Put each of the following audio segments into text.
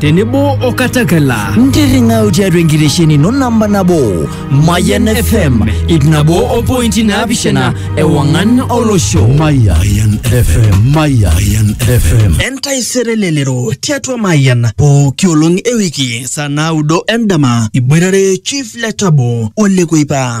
tenebo o katakela ntirring'au tiatua enkitesheni ino namba nabo mayan fm ip nabo o pointi naapishana ewang'an olosho Mayan FM. Mayan FM. entaisere lelero tiatua mayian pooki olong ewiki saa naudo endama iboitare chief letabo olekoipa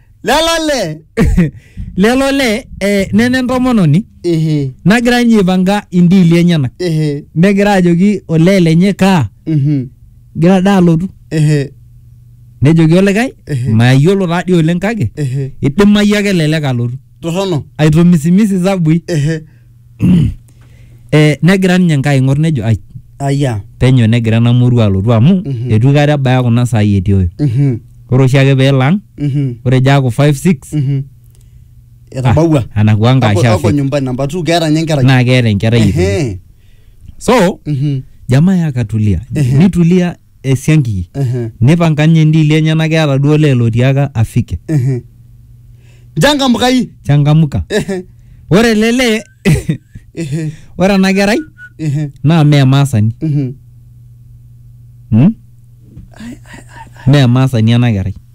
lelo lee lelo lee eh, nena entomononi ehe nagira ninye aipanga indiili enyenak ehe negira ajoki olee lenye kaa mhm gira daa alotu ehe nejoki olikae Ehe. mayiolo taadii oleng kake ehe idimayu ake elelek alotu torrono aitomisimisi zabui ehe eh, negira ninye nkai aing'or nejo ai aya penyo negira ena murua alotu amu Mhm. etu aikata ebaya kuna saai etii oyo Mhm, ore oshiake peelang mhm, ore ejo aaku 5 6 mhm. etabawua anakuwa Ako- ako nkaashafe nyumbani namba two keeta nye enkerai naa keeta enkerai itoki. Ehe, so mhm. jamaa yakatulia Ehe. nitulia esiankiki Ehe. nipanga ninye ndiili enyenak keeta duo olee lotiaka afike Ehe. Njangamkai. changamka Ehe. ore ele lee Ehe. ore ena kerai Ehe. naa mee emaasani Mhm. hmm? mee emaasani ena kerai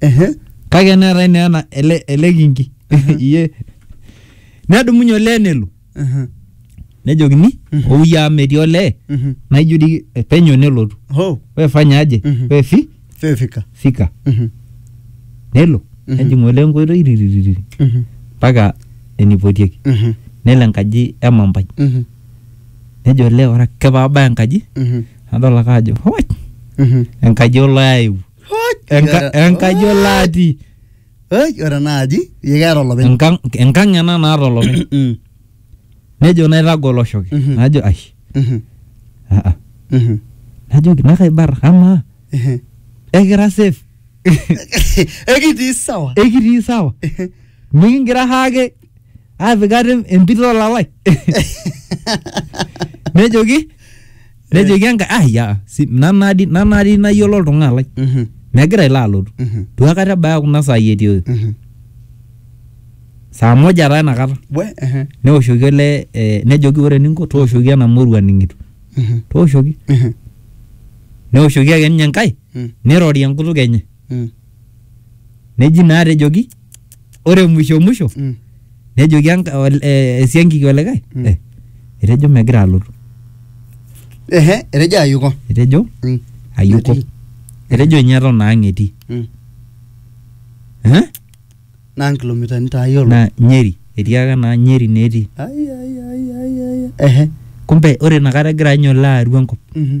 Ehe. kake neetae naa ena ele, ele kinki iye nedumunye olee nelo Ehe. nejokini Mhm. ouye amu metii olee Mhm. naijo dii penyo nelotu Ho. we fanya aje Mhm. we fi Fefika. fika Mhm. nelo Mhm. nejing olee enkoitoi ririririri Mhm. mpaka enipotieki Mhm. nelo enkaji emampai Mhm. nejo olee ore ake paabaya enkaji Mhm. nadol ake ajo "Hoi, Mhm. enkaji olo aewuo Enka- enkaji olo atii Oi, ore ena aji yie keeta olopeny Enkang- enkang ena naata olopeny Mm, nejo naitagol oshoki Mhm. najo ai mhm, "Ah, ah." mhm, najoki nakaibar amaa mhm. ekira safe ekitii sawa ekitii sawa mikingira haake aapik ate empit olalai nejoki nejoki enkae ah ya si nanadi nanadi nayiolo oltung'ani lai Mhm, megira ilo alotu mhm, duakata ebaya kuna saai etii mhm. saa moja taa inakata We, ehe, neoshoki ele eh, nejoki ore eninko tooshoki ena morua ning'itu mhm, tooshoki mhm, neoshoki ake ninye enkae mm, nirori enkutuk enye mm. neji naa tejoki ore mwisho mwisho Mm. nejoki enka- ol- eh, esiankiki olikae Mm. eh, etejo megira alotu Ehe, etejo ayuko. etejo Mm. ayuko Metii. etejo ninye eton ang etii Mm. Eh? Naa nkilomitani taa yiolo. naa nyeri etii ake naa nyeri netii Ai, ai, ai, ai, ai. Ehe. kumbe ore inakata egira ninye olo aru enkop Mhm.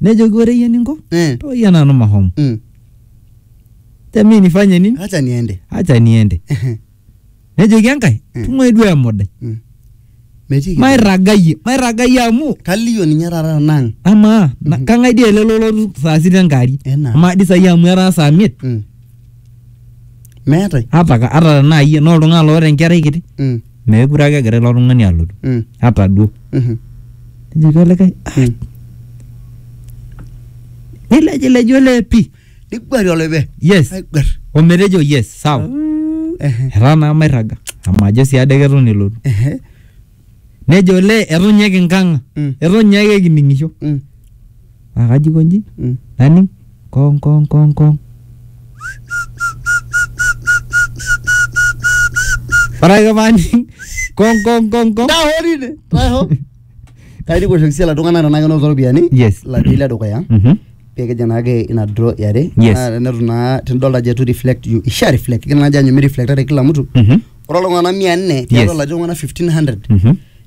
nejoki ore iyie ninko Eh. toyia nanu mahomo Mm. temi nifanye nini Acha niende. acha niende nejoki enkae Mm. tung'uai duo emodai Mm. Metii kitu. mairragayie mairragayie amu Kalio ninye taata nang. amaa na- Mhm. kang'ae dii ele lolotu saa sita enkaari Ena. amaa dii saai amu etaa saa miet Mm. Meetae. ata ka- ata tenaa iyie naa oltung'ani loota enkerai kiti Mm. meekure ake egira ilo tung'ani alotu Mm. hata duo Mhm. nejoki olikae "Ah." Mm. nilejilej olee pii niguari oloibe yes aiguar ometejo yes sawa Ehe. etaa naa mairraga amu ajo sii ade keton elotu Ehe. nejo olee eton ninye kinkang'a Mm. eton ninye ake kining'isho Mm. Naa kajo aikonji Mm. naning kong kong kong kong. Ore ake paaning kong kong kong kong. Daa hoo tine. Daa hoo. Kaidi kuoshoki sii iltung'anak tenaa kenotito iropiyiani. Yes. Latii le dukuya. Mhm. Pee kijing naake ina draw e are. Yes. Naa tenetu naa tenidolta ajo eitu reflect you isha reflect. Kila ajo anyu mi reflectare kila mtu. Mhm. Ore iltung'anak mia nne tiatua Yes. ilatii iltung'anak 1500 Mhm.